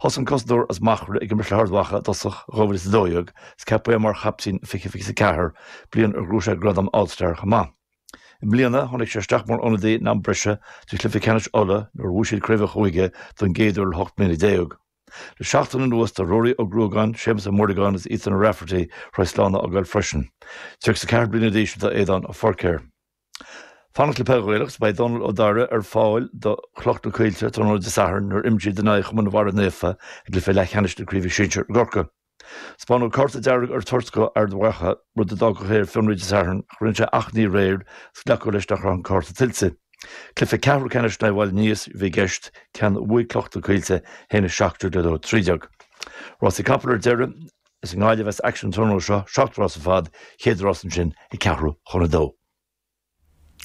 Thosaigh an cosantóir as Machaire ag imirt le hArd Mhacha i dtosach 2012 is ceapadh é mar chaptaen 2024, bliain ar ghnóthaigh sé gradam All Star chomh maith. I mbliana, tháinig sé isteach mar ionadaí in am breise do Chluiche Ceannais Uladh nuair a bhuaigh siad Craobh an Chúige don gcéad uair le hocht mbliana déag. Le seachtain anuas, tá Ruairí Ó Gruagáin, Séamus Ó Muireagáin is Ethan Ó Raifeartaigh tar éis slán a fhágáil freisin. 34 bliana d'aois atá Aidan Forker. Fanacht le Peil Ghaelach is beidh Dónal Ó Dáire ar fáil do Chloch na Coillte tráthnóna Dé Sathairn nuair a imreos siad in aghaidh Chumann Bharra Naofa i gcluiche leathcheannais na Craoibhe Sinsir i gCorcaigh. Spáineadh cárta dearg ar an toirt dó Ard Mhacha, rud a d'fhágfadh ar fionraí Dé Sathairn ach rinne sé achainí aréir agus glacadh leis nach raibh an cárta tuillte. Cluiche ceathrú ceannais in aghaidh Bhaile Níos a bhí i gceist, ceann a bhuaigh Cloch na Coillte 1-17 le 2-13. Rásaí capall ar deireadh. Is i nGaillimh a bheas action an tráthnóna seo, seacht rás ar fad, chéad rás ansin ag ceathrú chun a dó.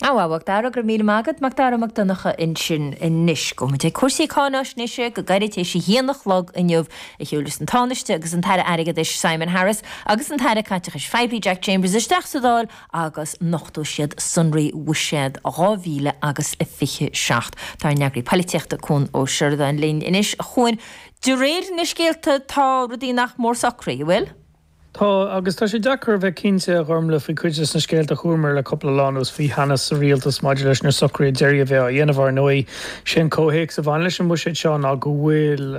Á, a Mhacdara, go raibh míle maith agat, Macdara Mac Donncha ansin. Anois, gabhfaimid ag cúrsaí cáinaisnéise. Go gairid tar éis a haon a chlog inniu, a shiúlfas an Tánaiste agus an tAire Airgeadais Simon Harris agus an tAire Caiteachais Phoiblí Jack Chambers isteach sa Dáil agus nochtfaidh siad sonraí Bhuiséad 2000 agus a fiche seacht. Tá ár n-eagraí polaitíochta Cuan Ó Seireadáin linn anois. A Chuain, De réir na scéalta tá rudaí nach mór socraithe, an bhfuil? Tá, agus tá sé deacair a bheith cinnte, a Ghormlaith, faoi chuid des na scéalta a chualamar le cupla lá anuas faoi theannas sa Rialtas maidir leis na socruithe deiridh a bheidh á dhéanamh. Ár ndóigh, sé an comhthéacs a bhaineann leis an mbuiséad seo ná go bhfuil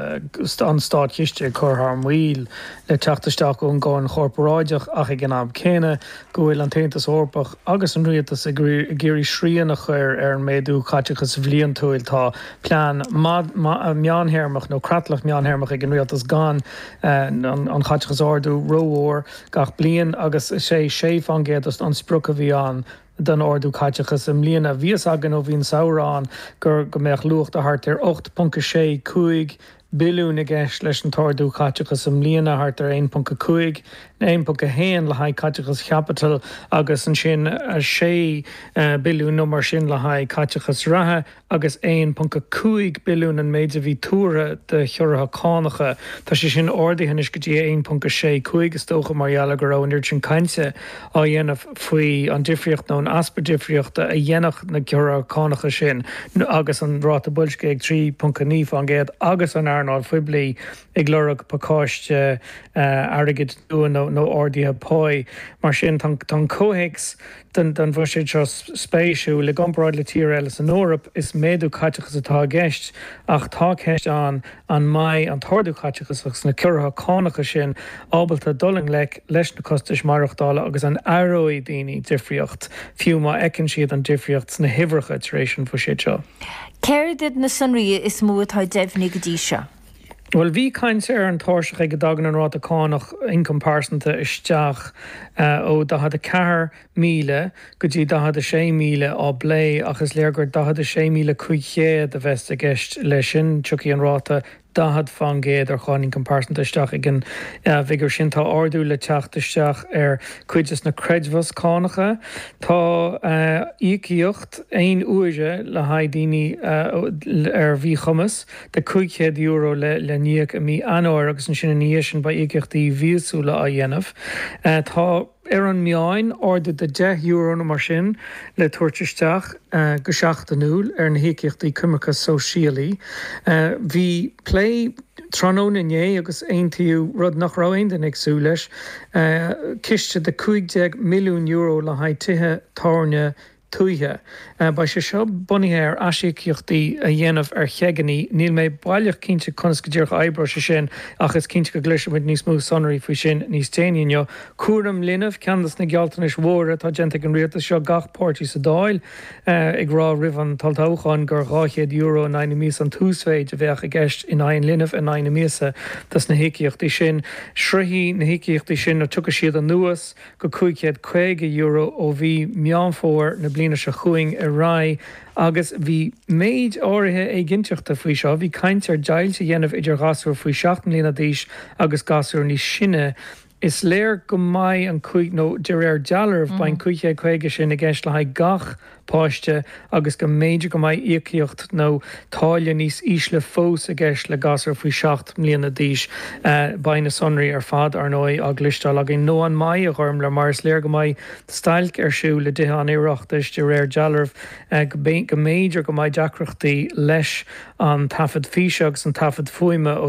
an Státchiste ag cur thar maoil le teacht isteach ón gcáin chorparáideach ach ag an am céanna go bhfuil an tAontas Eorpach agus an Rialtas ag iarraidh srian a chur ar an méadú caiteachais bhliantúil. Tá. plean meántéarmach nó creatlach meántéarmach ag an Rialtas gan an chaiteachas ardú rómhór gach bliain agus is é 6% an sprioc a bhí ann don ardú caiteachais i mbliana. Bhí a fhios againn ó bhí an samhradh ann gur, go mbeadh luach de thart ar 8.65 billiún i gceist leis an t-ardú caiteachais i mbliana, thart ar 1.5 nó 1.1 le haghaidh caiteachas chaipitil agus ansin 6 billiún nó mar sin le haghaidh caiteachas reatha agus 1.5 billiún an méid a bhí tuartha do chiorruithe cánacha. Tá sé sin ardaithe anois go dtí 1.65 is dócha mar gheall ar go raibh an oiread sin cainte á dhéanamh faoi an difríocht nó an easpa difríochta a dhéanfadh na ciorruithe cánacha sin agus an ráta boilscithe ag 3.9 faoin gcéad agus an earnáil phoiblí ag lorg pacáiste airgid nua nó ardaithe páí. Mar sin, tá an comhthéacs don bhuiséad seo spéisiúil. I gcomparáid le tíortha eile san Eoraip, is méadú caiteachais atá i gceist ach tá ceist ann, An mbeidh an t-ordú caiteachais agus na ciorruithe cánacha sin ábalta dul i ngleic leis na costais maireachtála agus an aireoidh daoine difríocht fiú má fheiceann siad an difríocht sna huimhreacha tar éis an bhuiséid seo? Céard iad na sonraí is mó atá deimhnithe go dtí seo? Bhuel, bhí caint ar an tairseach ag a dtagann an ráta cánach ioncaim pearsanta isteach ó 44. míle go dtí 46,000 á phlé ach is léir gur 46,500 a bheas i gceist leis sin. Tiocfaidh an ráta 40 fán gcéad ar cháin ioncaim pearsanta isteach ag an bhfigiúr sin. Tá ardú le teacht isteach ar chuid de na creidmheasa cánacha. Tá íocaíocht aon uaire le haghaidh daoine ar mhíchumas de €500 le n-íoc i mí Eanáir agus ansin ina dhiaidh sin beidh íocaíochtaí mhíosúla á dhéanamh. Tá. ar an meán, ardú de deich euro nó mar sin le tabhairt isteach go seachtainiúil ar na híocaíochtaí coimirce sóisialaí. Bhí plé tráthnóna inné agus aontaíodh rud nach raibh aon duine ag súil leis, ciste de €15 milliún le haghaidh tithe tábhairne tuaithe. Beidh sé seo bunaithe ar aisíocaíochtaí a dhéanamh ar cheaigeanna. Níl mé baileach cinnte conas go díreach a oibreoidh sé sin ach is cinnte go gcloisfidh muid níos mó sonraí faoi sin níos déanaí inniu. Cúram linbh, ceann dos na gealltanais mhóra atá déanta ag an Rialtas seo, gach páirtí sa Dáil ag rá roimh an tOlltoghchán gur €200 in aghaidh na míosa an t-uasmhéid a bheadh i gceist in aghaidh an linbh in aghaidh na míosa dos na híocaíochtaí sin. Sroichfidh na híocaíochtaí sin nó tiocfaidh siad anuas, go €550 ó mhí Meán Fómhair na bliana seo chugainn ar aghaidh agus bhí méid áirithe éiginnteachta faoi seo. Bhí caint ar dheighilt a dhéanamh idir ghasúir faoi seacht mbliana d'aois agus gasúir níos sine. Is léir go mbeidh an cúig nó de réir dealraimh beidh an 550 sin i gceist le haghaidh gach páiste agus go mb'fhéidir go mbeidh íocaíocht nó táille níos ísle fós i gceist le gasúir faoi sheacht mbliana d'aois. Beidh na sonraí ar fad, ar ndóigh, á gcloisteáil againn. Nó an mbeidh, a Ghormfhlaith? Mar is léir go mbeidh stailc ar siúl i dTithe an Oireachtais de réir dealraimh, go mb'fhéidir go mbeidh deacrachtaí leis an taifead físe agus an taifead fuaime ó